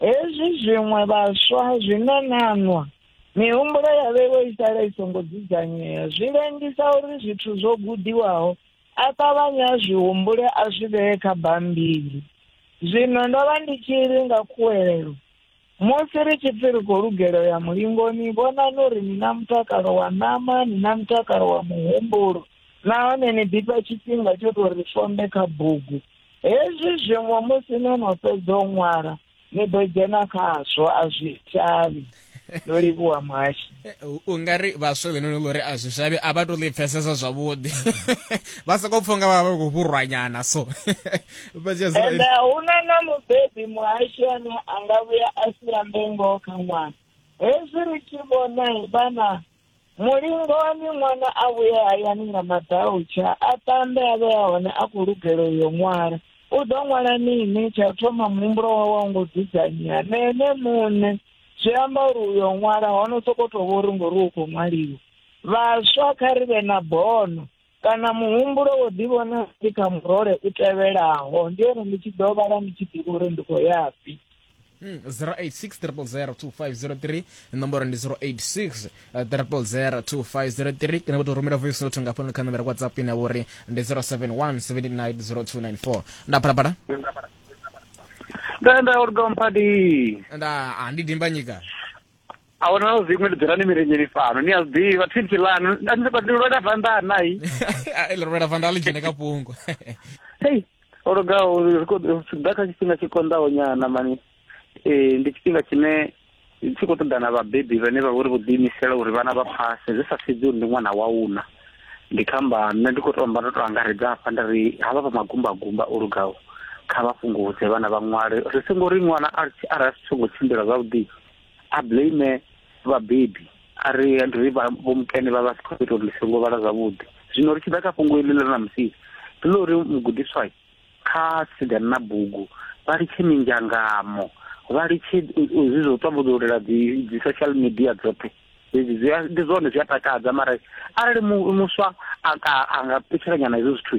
Hezwi zwiṅwe vhaswa zwi na nanwa, mihumbulo ya vheiwe i sala i songo dzudzanyea, zwi lengisa uri zwithu zwo gudiwaho a ṱavhanye a zwi humbule a zwi vhee kha bammbiri. Zwino ndo vha ndi tshi ri nga khuwelelo, Musi ri tshi pfi ri khou lugela u ya mulingoni, vhonani uri ni na mutakalo wa ṋama, ni na mutakalo wa muhumbulo nahone ni ḓifha tshifhinga tsho tou ri fombe kha bugu. Hezwi zwiṅwe musi no no fhedza u ṅwala ni ḓo dzhena khazwo a zwi shavhi ndo livhuwa muhashi eh, u nga ri vhaswa vhenoni ḽo ri a zwi shavhi a vha to ḽi pfesesa zwavhuḓi vha sokou pfha nga vha vha khou vhurwanyana so ende a hu na na mubebi muhashi ane a nga vhuya a sia mbengo kha ṅwana hezwi ri tshi vhona vhana mulingo wa miṅwana a vhuye hayani nga madautsha a tambe a vhe a hone a khou lugela uyo ṅwala u ḓo ṅwala mini tsha u thoma muhumbulo wawe wa ngo dzudzanyea na ene muṋe zwi amba uri uyo ṅwala hono sokou tou vha uri ngori u khou ṅwaliwa vhaswa kha ri vhe na bono Kana muhumbulo wo ḓivhona ndi kha murole u tevhelaho, ndi uri ndi tshi ḓo vhala ndi tshi ḓivha uri ndi khou yafhi. 0860002503 hmm, nomboro ndi 0860002503 kana vho tou rumela voice note nga fhano kha nomboro whatsapp ine vho ri ndi 0717900294 nda phalaphala nda nda uri domphadi nda andi dimbanyika a hu na zwiṅwe ndi dzula ni mirenyeni fhano ni a zwi ḓivha thipsi ḽanu ndi lwela vanda nai ḽi lwela vanda ḽi dzhene ka fhungo hei o lugaho ḓa kha tshifhinga tshi konḓaho nyana mani um ndi tshifhinga tshine tshi khou ṱoḓa na vhabebi vhane vha vha uri vho ḓiimisela uri vhana vha phase zwi sa sedzi uri ndi ṅwana wa una ndi kha amba nṋe ndi khou tou amba ndo tou angaredza hafha nda ri havha vha magumbagumba o lugaho kha vha fhungudze vhana vha ṅwale ri songo ri ṅwana arali a si tsongo tshimbila zwavhuḓi a blame vhabebi a ri ri vha vho mukene vha vha si khou ita uri ḽi songo vhala zwavhuḓi zwino ri tshi ḓa kha fhungo iḽi ḽa na musi ndi ḽa uri mugudiswa kha sidan na bugu vha litshe minzhangamo vha litshe zwi zwo tambudzulela dzi dzi social media dzoṱhe dzedzi zwi ndi zwone zwi a takadza mara arali muswa a nga ṱutshela nyana hezwo zwithu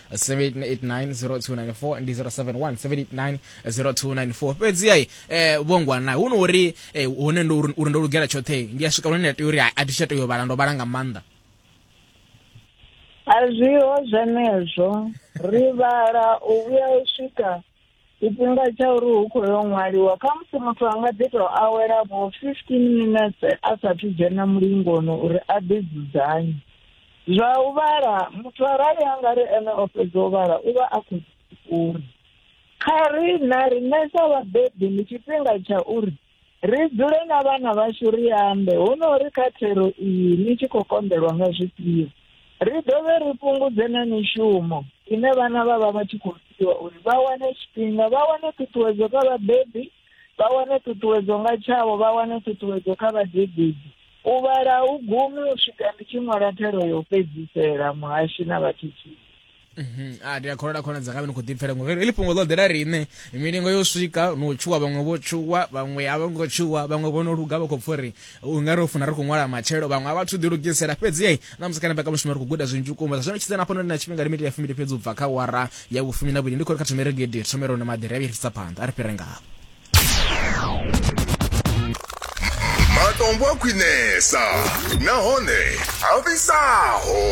7890294 ndi 0717890294 fhedzi ai eh, vhongwa na hu no uri eh, hune ndo uri ndo lugela tshoṱhe ndi a swika hune nda tea uri a thi tsha tea u vhala ndo vhala nga maanḓa a zwiho zwenezwo ri vhala u vhuya u swika tshifhinga tsha uri hu khou yo ṅwaliwa kha musi muthu a nga ḓi tou awela vho fifteen minetse a saathu dzhena mulingoni uri a ḓi dzudzanye zwa u vhala muthu arali a nga ri ene o fhedza u vhala u vha a khou uri kha ri na riṋe sa vhabebi ndi tshifhinga tsha uri Ri dzule na vhana vhashu ri ambe, huno ri kha thero iyi ni tshi khou konḓelwa nga zwifhio. Ri dovhe ri fhungudze na mishumo ine vhana vha vha vha tshi khou fhiwa uri vha wane tshifhinga, vha wane ṱhuṱhuwedzo kha vhabebi, vha wane ṱhuṱhuwedzo nga tshavho, vha wane ṱhuṱhuwedzo kha vhadededzi. U vhala a hu gumi u swika ndi tshi ṅwala thero ya u fhedzisela, muhashi na vhathuthuzi. Mhm. a ah, ndi a kholola khona dzanga vhe ni khou ḓipfela ngo heḽi fhungo ḽo ḓela riṋe milingo yo swika no tshuwa vhaṅwe vho tshuwa vhaṅwe a vho ngo tshuwa vhaṅwe vho no luga vha khou pfha uri u nga ri funa ri khou ṅwala matshelo vhaṅwe a vhathu ḓilugisela fhedzi ei na musi kana mbekamushumo ri khou guda zwinzhi vhukuma zwa zwino tshidza na fhano na tshifhinga limiti ya fumili fhedzi u bva kha wara ya vhufumi na vhuli ndi khou ri kha thomere gidi thomero na maḓira ya vhirisa phanḓa a ri fhire ngavho matombo a khwinesa nahone a fhisaho